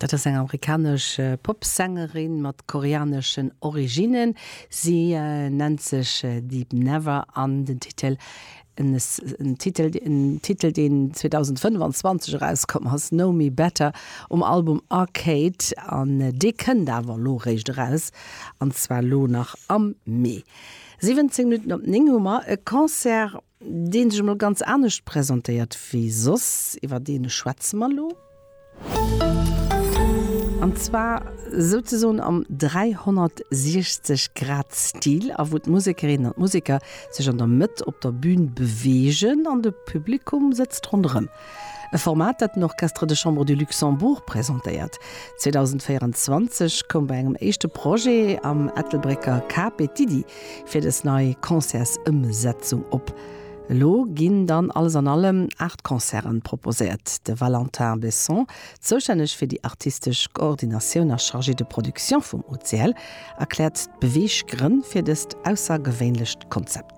Dat ass eng amerikanesch Popsängerin mat koreaneschen Originnen. Si nennt sech Deep Never an den Titel, en Titel, en Titel deen 2025 erauskomm ass, Know Me Better um Album Arcade an dee kënnt awer elo eréischt eraus an zwar elo nach am Mee. 17 Minutten op 9 hu mer e Concert. deen sech emol ganz anescht presentéiert wéi soss, iwwer dee schwätze mer elo, an zwar souzesoen am 360 Grad Stil, a wou d'Musekerinnen an d'Museker sech an der Mëtt op der Bün beweegen an de Publikum sëtzt ronderëm. E Format, dat den Orchestre de Chambre du Luxembourg presentéiert. 2024 koum bei engem éischte Projet am Ettelbrécker CAP d'Iddi fir dës nei Concertsëmsetzung op. Elo ginn dann alles an allem 8 Concerten proposéiert. De Valentin Besson, zoustänneg fir déi artistesch Koordinatioun a Chargé de production vum OCL, erkläert d'Beweeggrënn fir dëst aussergewéinlecht Konzept.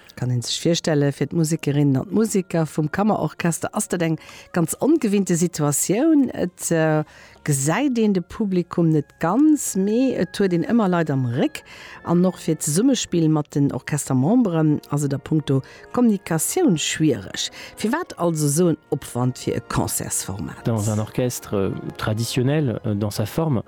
Kann een sech virstellen, fir d'Musikerinnen an d'Musiker vum Kammerorchester ass dat eng ganz ongewinnte Situatioun. Et gesäit een de Publikum net ganz, mee et huet een ëmmer Leit am Réck. An och fir d'Zesummespill mat den Orchestermemberen ass et a punkto Kommunikatioun schwiereg. Firwat also sou en Opwand fir e Concertsformat? Dans un orchestre traditionnel dans sa forme.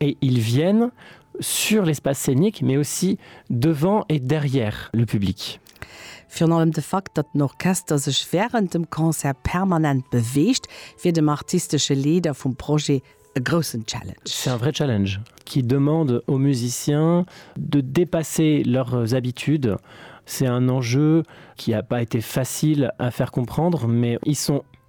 Et ils viennent sur l'espace scénique, mais aussi devant et derrière le public. Virun allem de Fakt, datt den Orchester sech wärend dem Concert permanent beweegt, wier dem artistesche Leeder vum Projet e groussen Challenge. C'est un vrai challenge qui demande aux musiciens de dépasser leurs habitudes. C'est un enjeu qui a pas été facile à faire comprendre, mais ils sont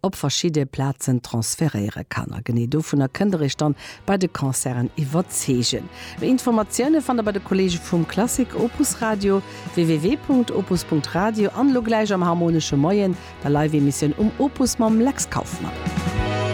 op verschidde Plazen transferéiere kann. A genee dovunner kënnt der Iech dann bei de Concerten iwwerzeegen. Méi Informatioune fannt der bei de Kolleege vum Klassik Opus Radio, www.opus.radio, an elo gläich am Harmonesche Moien, der Live-Emissioun um Opus mam Lex Kauffmann.